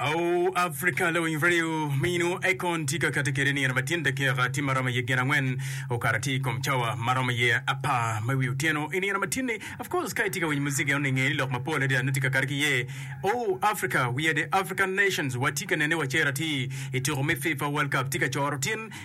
Awu Africa lawiny radio mino Akon tye ka kati kede nino matin dakeka tye maromo iye gin angwen okato atir ikom cawa maromo iye apar ma iwi otyeno inino matin ni of course ka itye ka winyo music eno ninge ni lok mapol adada nongo tye ka kati ki iye Awu Africa we are the African nations watye ka nene wa cero atir ituko me FIFA world cup tye ka coro tin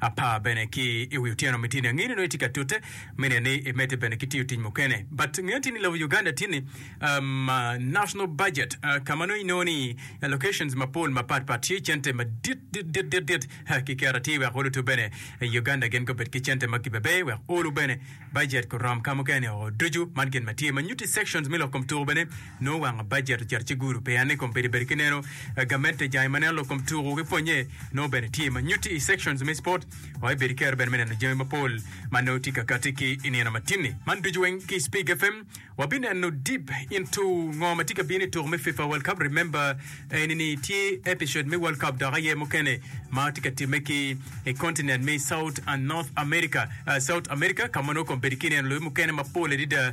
Apar bene ki i wi otyeno me tini angeyo ni nongo itye ka tute mine ni imedde bene ki tiyo tic mukene but ngeyo tini lobo Uganda tye ni um, national budget uh, ka ma nongo inongo ni allocations mapol mapat pat tye cente madit dit dit dit dit uh, ki keto atir wek olutu bene i Uganda gin gubed ki cente ma gibebe wek olu bene budget kurom ka mukene oo ducu man gin ma tye ma nyuti sections me lok kom tuku bene Nongo wanga bajet ocito ci gudo peya ni kom pedi bedo ki neno gamente jai ma neno lok kom tuku ki pwonye nongo bene tye ma nyutti i sections me sport wa ibedo kero bene me neno jami mapol ma nongo tye ka kati ki i nino ma tini man ducu weng ki spig FM wa bi neno deep into ngo ma tye ka bino i tuku me fifa world cup remember eni ni tye episode me world cup dok aye mukene ma tye ka time ki i continent me south and north america uh, south america ka ma nongo kom bedo ki neno loyo mukene mapol adida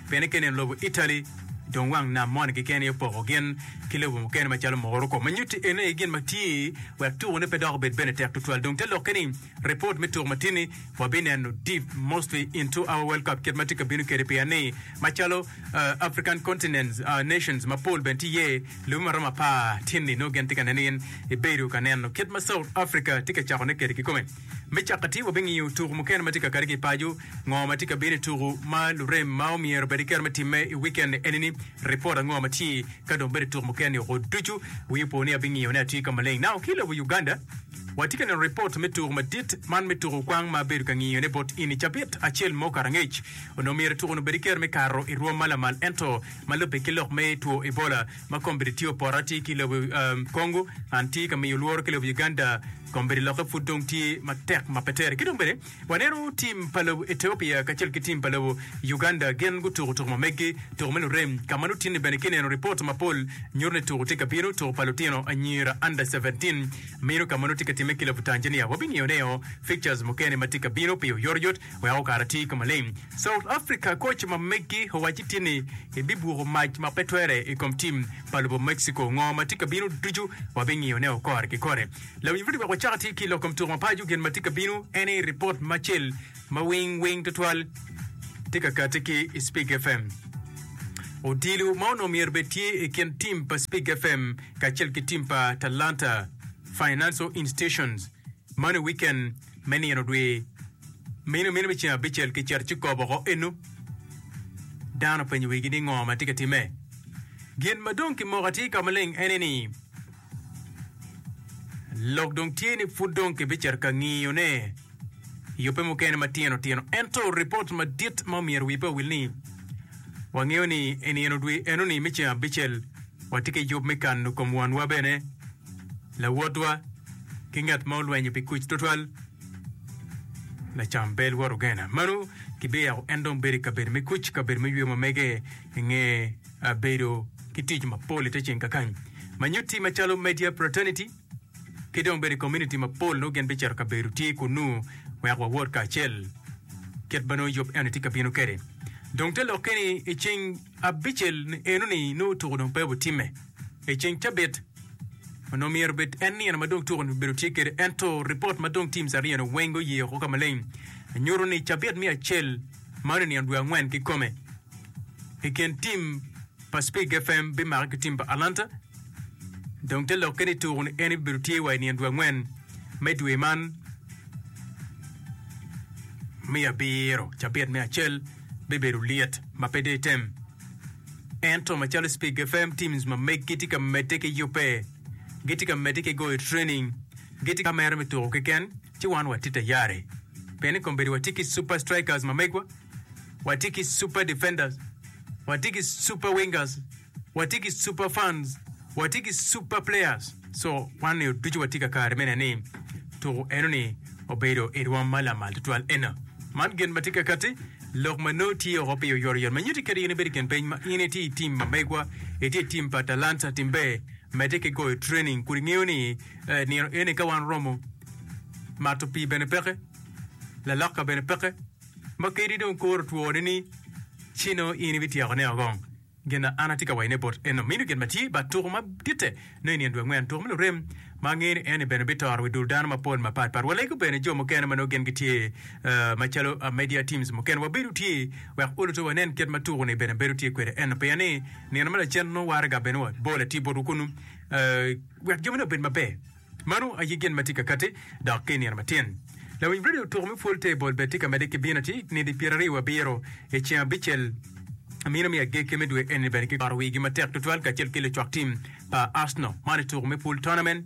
Fenike nen lobo Italy dong wang nam moni keken aye opoko gin ki lobo mukene macalo Morocco ma nyutti ene aye gin ma tye wek tuko ne pe dok obed bene tek tutwal dong te lokke ni report me tuko ma tye ni wa bi neno deep mostly into our world cup kit ma tye ka bino kede pien ni macalo African continents nations ma pol bene tye iye lobi ma romo apar tye ni nongo gin tye ka neno in ibedo ka neno kit ma South Africa tye ka cako ne kede kikome Me cakkati, wabingiyo tuku mukene ma tye kakati ki i paco, ngo ma tye ka bino i tuku ma lurem ma omyero bed kero me timme i wikend-ni enini, ripot ango ma tye ka dong bedo i tuku mukene ni oko ducu. Wi opo ni abingiyo ni atye ka maleng. Now ki i lobo Uganda, watye ka neno ripot me tuku madit man me tuku kwang ma abedo ka ngiyone bot in i cabit acel mo okato angec. Onongo myero tukuni obed kero me kato i rwom ma lamal ento ma lubbe ki lok me two Ebola ma kombeddi tye opota tye ki i lobo Congo and tye ka miyo lworo ki lobo Uganda. Kombeddi lokke pud dong tye matek ma pe tere. Ki dong bene waneno tim pa lobo Ethiopia kacel ki tim pa lobo Uganda gin gutuko tuko ma meggi, tuko me lurem, ka ma lutinni bene ki neno ripot mapol nyuto ni tuko tye ka bino, tuko pa lutino anyira under seventeen meno ka ma nongo tye ka timme ki lobo Tanzania. Wabingiyo neo fixtures mukene ma tye ka bino pi oyotoyot wek okara ti ka maleng. South Africa koc ma meggi owacci tinni ebibuko mac ma pe twere i kom tim pa lobo Mexico. Ngo ma tye ka bino ducu wabingiyone o kore ki kore. Lawiny Rudy wek wacak atir ki i lok kom tuko mapaco. Gin ma tye ka bino en aye ripot ma cel ma wing wing twatwal tye ka kati ki i Spig FM. Odilo ma onongo myero bed tye i kin tim pa Spig FM kacel ki tim pa Talanta Financial Institutions Mano i wiken me nino dwe meno meno me ceng abicel kicito ci kop oko eno. Dano penyo wigi ni ngo ma tye ka timme. Gin ma dong kimoko atir ka maleng ene ni lok dong tye ni pud dong kibicito ka ngiyo ne i ope mukene matino tino ento ripot madit ma omyero wi pe owil ni wangeyo ni i nino dwe eno ni me ceng abicel watye ki yub me kano kom wanwa bene Lawotwa, ki ngat ma olwenyo pi kuc tutwal, lacam pe lworo gena. Mano kibiyako en dong bedo i kabedo me kuc, kabedo me yweyo ma mege i nge ah, bedo ki tic mapol i te ceng kakany. Ma nyutti macalo media fraternity ki dong bedo i community mapol nongo gin bicito kabedo tye kunnu wek wawot kacel kit ma nongo yub eno tye ka bino kwede. Dong te lokke ni i ceng Abicel ni enoni nongo tuko dong pe obitimme i ceng cabit onongo myero obed en nino ma dong tuko ni obedo tye kede ento ripot ma dong teams aryo ni weng guye oko ka maleng nyuto ni cabit me acel ma oneno nino dwe angwen ki kome i kin team pa Spig FM bimake ki team pa Alanta dong te lokke ni tuko ni en bibedo tye wa i nino dwe angwen me dwe man me abiro cabit me acel bibedo lit ma pe dong item. Ento macalo Speke FM, teams ma meggi tye ka medde ki yubbe, gitye ka medde ki goyo training, gitye ka mere me tuko keken, ci wan watye tayari. Pien i kombeddi watye ki super strikers ma megwa, watye ki super defenders, watye ki super wingers, Watye ki super fans, watye ki super players so wan nio ducu watye ka kare mene ni tuku eno ni obedo i rwom ma lamal tutwal ena. Man gin ma tye ka kati lok ma noo tye oko pi oyoro yot ma nyuti kadi in ibedo kin peny ma in itye i tim ma megwa itye i tim pa talanta tim ber mete ki goyo training kudi ngeyo ni eh, nino eni ka wan romo mato pii bene peke laloka bene peke ma kadi dong koro twone ni cino in ibityeko ne ogong Gin an atye ka wayone bot eno mino gin ma tye bat tuku ma ditte no i nino dwe angwen, tuku me lurem ma angeyo ni eni bene bitoro wi dul dano mapol ma pat pat. Walego bene jo mukene ma nongo gin gitye ma calo media teams mukene. Wabedo tye wek oluto wanen kit ma tuku ni bene bedo tye kwede eno pien ni nino ma lacen nongo waraga bene wa bol atir botwu kunu wek jami ni obed maber. Mano aye gin ma tye ka katti, dok ki i nino matin. Lawiny redio tuko me pwol te bol bene tye ka medde ki bino atir nidi pyera ryo wa biro i ceng abicel mino me agekki me dwe eni bene ki karo wigi matek tutwal kacel ki lucwak tim pa Arsenal man i tuko me pwol tournament.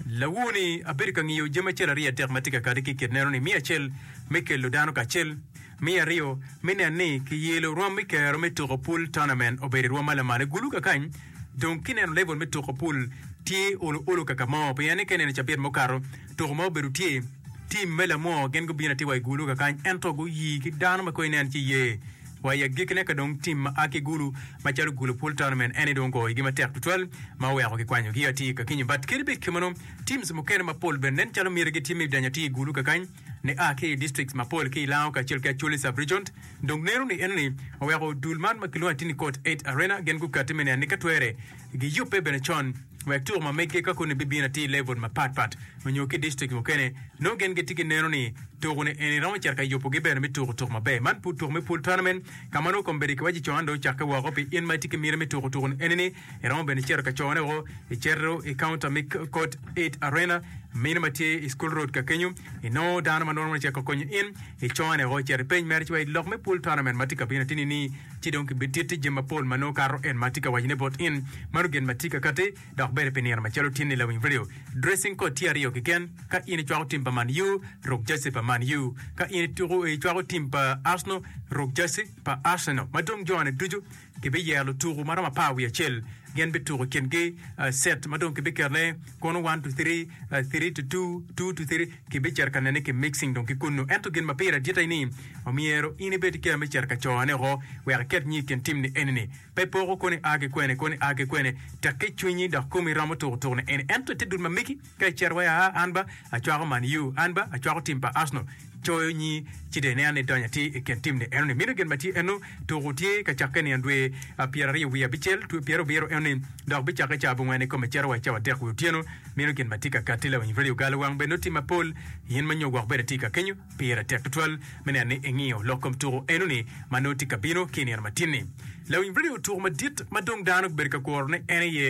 Lawoo ni abedo ka ngiyo jami acel aryo adek ma tye ka katti ki i kit neno ni miyo acel me kello dano kacel. Me aryo, me nen ni kiyelo rwom me kero me tuko pul tournament obedo i rwom ma lamal. I gulu kakany, dong kineno level me tuko pul tye ulu ulu kaka mo, pien ni ka ineno i cabit mukato, tuko ma obedo tye, team me lamwor gin gubino atir wa i gulu kakany ento guyi ki dano ma kong inen ci iye. Wa i agikkine ka dong team ma a ki gulu macalo gulu pul tournament en ni dong ogoyo igi matek tutwal ma oweko kikwanyogi atir kakinyo but kadi bed kemeno, teams mukene mapol bene nen calo miti gitye me danyo atir i gulu kakany. ni a ki i districts mapol ki i Lao kacel ki Acholi Sub-region dong neno ni enoni oweko dul man ma kilwongo ni Tini Court Eight Arena gin gukati me neno ni ka twere giyubbe bene con wek tuko ma meggi ka koni bibino atir i level mapat pat onyo ki i district mukene nongo gin gitye ki neno ni tuko ni eni romo cito ka yubugi bene me tuko tuko maber. Man pud tuko me Pool Tournament ka ma nongo kombeddi kiwaco co an dong ocakke woko pi in ma itye ki miti me tuko tuko ni eni ni Iromo bene cito ka cone woko, icito i kaunta me Court 8 Arena, meno ma tye i School Road ka kenyo. Inongo dano ma nongo cek ka konyo in, icone woko, icito ipeny mere ci wa i lok me Pool Tournament ma tye ka bino ateni ni, ci dong kibititti jami mapol ma nongo kato en ma atye ka wacone bot in. Mano gin ma tye ka katti, dok bedi pi nino macalo tin ni lawiny redio. Dressing code tye aryo keken, ka in icwako tim pa Man U, ruk jersey pa Man U. Ka in ituko, icwako tim pa Arsenal, ruk jersey pa Arsenal. Ma dong jone ducu. Gibiyero lutuku ma romo apar wiye acel, gin bituku i kingi cet ma dong kibiketone kono one to three, three to two, two to three. Kibicito ka nene ki mixing dong ki kunnu. Ento gin ma pire dit aye ni omyero in ibed ki kema me cito ka cone woko wek iket nyi i kin timni eni-ni. Pe poko kono ia ki kwene, kono ia ki kwene, tekke cwinyi dok komi romo tuku tukne eni. Ento ite dul ma megi. Ka icito wa i aa, an ba acwako Man U, an ba acwako tim pa Arsenal. Coyo nyi ci dong ineno ni donyo atir i kin tim ni enoni. Mino gin ma tye eno, tuku tye ka cakke niang dwe pyeraryo wiye abicel, dwe pyerabiro enoni, dok bicakke caa abongwen ikome icito wa i cawa adek wi otyeno. Mino gin ma tye ka katti laony Radio Gal wang bene noti mapol. In ma nyo gwok bene tye ka kenyo, pire tek tutwal me neno ni ingiyo lok kom tuku enoni ma nongo tye ka bino ki inino ma tin ni. Laony Radio tuku madit ma dong dano gibedo ka kuro ni en aye.